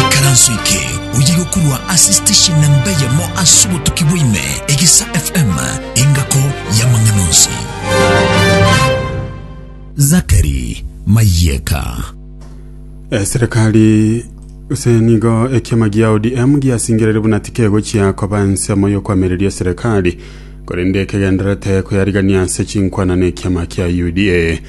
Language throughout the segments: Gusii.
Ikaranso eke oye gokorwa ase station namba eyemo ase obotuki bwaime, Egesa FM, engako y'amang'ana onsi. Zakari Mayeka. eserikali ase nigo ekiama gia odm giasingereri buna tikegochia koba ensemo y'okwamereria eserikali korende ekegendererete koyarigania ase chinkwana na ekiama kia uda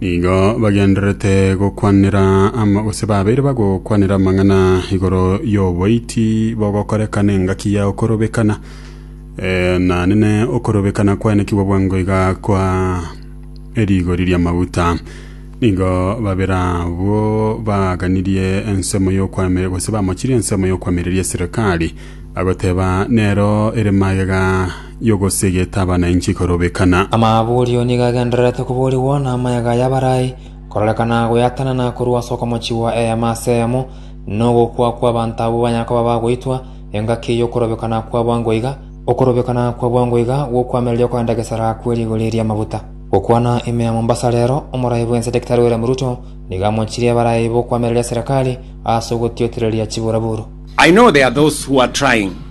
Nigo bagendererete gokwanera ama, gose babeire bagokwanera amang'ana igoro y'oboiti bogokoreka n'engaki ya okorobekana. Eh, nanene okorobekana kwaenekigwa bwango iga kwa erigori ri'amaguta. Nigo babere abwo baaganirie ensemo y'okwame, gose bamochirie ensemo y'okwamereria eserekari, bagoteba, Nero ere magega y'ogosegeta abananchi korobekana. Amaborio nigo agendererete koborigwa namayaga y'abarai, kororekana goyatanana korwa ase okomochigwa eema ase eyemo, na ogokwa kw'abanto abwo banya koba bagoitwa, engaki y'okorobekana kwa bwango iga, okorobekana kwa bwango iga gw'okoamereria okogenda gesara kwe rigori ri'amaguta. Gokwana ime ya Mombasa rero, Omorai bw'ense Daktari William Ruto nigo amochirie abarai b'okoamereria serikali ase ogotiotereria chiburaburo. I know there are those who are trying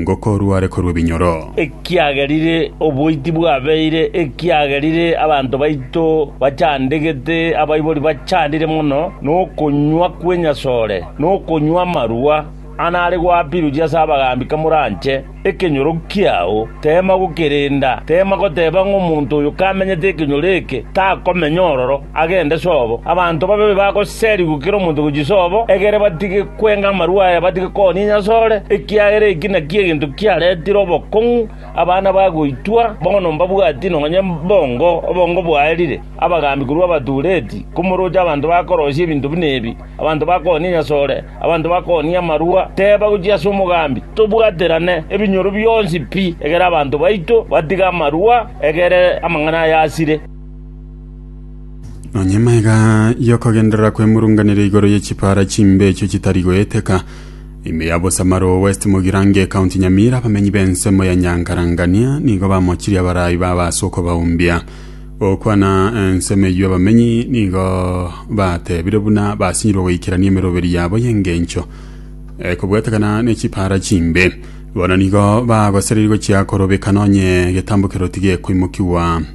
ngokorwa are korwa ebinyoro. Ekiagerire oboiti bwabeire, ekiagerire abanto baito bachandegete, abaibori bachandire mono nokonywa kw'enyasore, nokonywa amarwa ang'e are goapiruchia ase abagaambi kamoranche ekenyoro kiao, teema gokerenda, teema goteba ng'a omonto oyo kamenyete ekenyoro eke takomenya ororo. agende sobo. Abanto babe bagoserigwe kera omonto gochia sobo, egere batige kwenga amarua aya, batige koonia enyasore, ekiagera eki nakio egento kiaretire obokong'u, abana bagoitwa, bono mbabwati nonye mbongo, obongo bwaerire, abagaambi korwa abatuureti, komoroche abanto bakorosia ebinto buna ebi, abanto bakoonia enyasore, abanto bakoonia amarua, teeba gochia ase omogaambi, tobwaterane ebinyoro bionsi pi, egere abanto baito batige amarua, egere amang'ana aya asire. Onye maiga y'okogenderera kw'emurunganire igoro ye chipara chimbe echio chitari goeteka ime ya bosamaro west mogirange county nyamira abamenyi b'ensemo ya nyankarangania nigo bamochirie abarayi baba ase okobaumbia gokwana ensemo eyio abamenyi nigo batebire buna basinyirwe goikerania emeroberi yabo y'engencho ekobwatekana ne chipara chimbe bono nigo bagosereria gochia korobekana onye egetambo keroti gekoimokigwa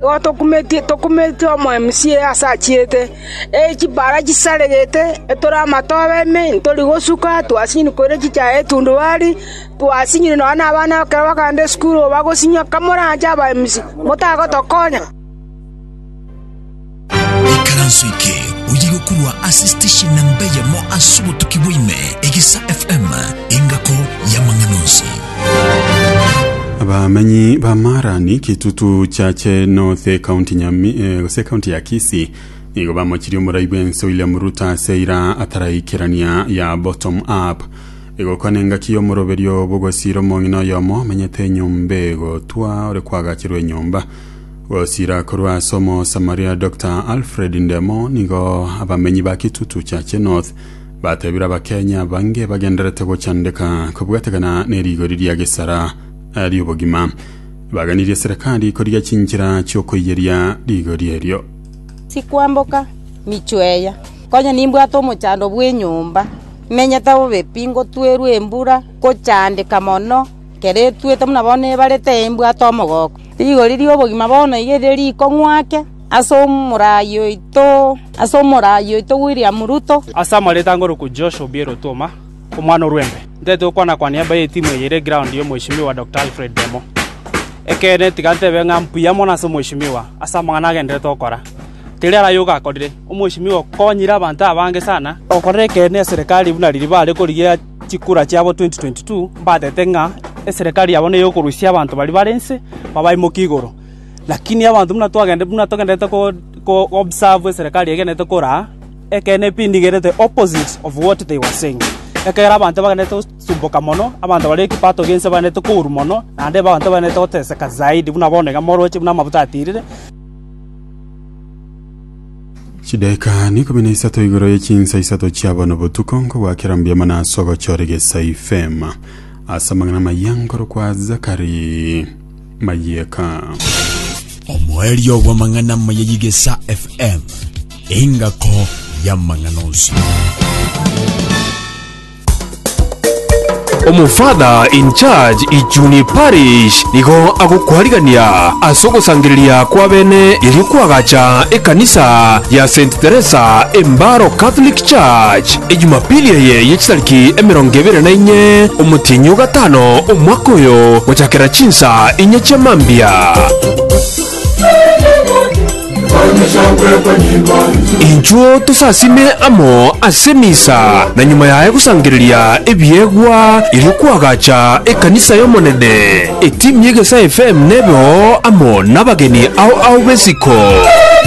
Igo tokumetie, tokumetie omoemsie aase achiete, ee chipara chisaregete, etore amato abe ime, ntori gosuka, twasinyire koira chichaya etundubari, twasinyire nonya na abana ekero bakaenda esukuru, bagosinywa, kamoranche abaemisi, motagotokonya. Ikaranso eke oye gokorwa ase station namba eyemo ase obotuki bwaime, Egesa FM, engako y'amang'ana onsi. Abamenyi ba Marani, Kitutu, Chache North, County Nyami, eh, gose County ya Kisii nigo bamochirie omorai bw'ense William Ruto ase eira ataraikerania ya bottom up egokwana engaki y'omoroberio bw'ogosiira omong'ina oyomo omenyete enyomba egotwa ore kwagacherwa enyomba Gosira korwa ase Omosamaria Dr Alfred Ndemo nigo abamenyi ba Kitutu Chache North batebire Abakenya bange bagenderete gochandeka kobwategana n'erigori ria Gesara eh, ri'obogima baganirie serikali korigia chinchera chi'okoiyeria rigori erio. Sikwamboka michweya, konya nimbwate omochando bw'enyomba, menyete bobe pi, ngotwerwa embura, ngochandeka mono. Kere etuete buna bono ebarete embwate omogoko. Rigori ri'obogima bono iga erio rikong'wa ake ase omorai oito, ase omorai oito William Ruto. Ase amareeta angorokwe Josh Obiero Otuoma, omwana o Rwembe, ntete gokwana-kwania baye etimu eye ere ground ya Omweshimiwa Doctor Alfred Demo. Ekeene tiga ntebe ng'a mbuya mono ase Omweshimiwa ase amang'ana agenderete gokora. Teri ara yoka akorire, Omweshimiwa okonyire abanto abange sana. Okorera ekeene eserekari buna riria bare korigia. chikura chiabo 2022, mbatete ng'a eserekari yabo ney'okorusia abanto baria bare inse babaimoke igoro. Lakini abanto buna twagende buna togendererete ko observe eserekari egendererete koraa, ekeene pi ndigerete opposite of what they were saying. Ekiagera abanto bagendererete gosumboka mono, abanto baria ekipato ki'ense bagendererete kourwa mono, naende abanto bagendererete goteseka zaidi buna bono iga moroche buna amabuta atirire. Chidaeka nikumi na isato igoro ye chinsa isato chia bono botuko nkogwakera mbuya mono ase ogochora egesa ifema ase amang'ana maya nkorokwa Zakari Mayeka. omoerio bw'amang'ana maya y'egesa FM, engako y'amang'ana onsi. Omofather in charge Ichuni Parish nigo agokwarigania ase ogosangereria kw'abene erio kw'agacha ekanisa ya Saint Teresa Embaro Catholic Church ejumapili eye ye chitariki emerongo ebere na inye omotienyi o gatano omwaka oyo gochakera chinsa inye chia mambia. Inchuo tosasime amo ase emisa, na nyuma yaye gosangereria ebiegwa erio kwagacha ekanisa y'Omonene. Etimu y'Egesae FM nebe oo amo nabageni ao ao b'esiko.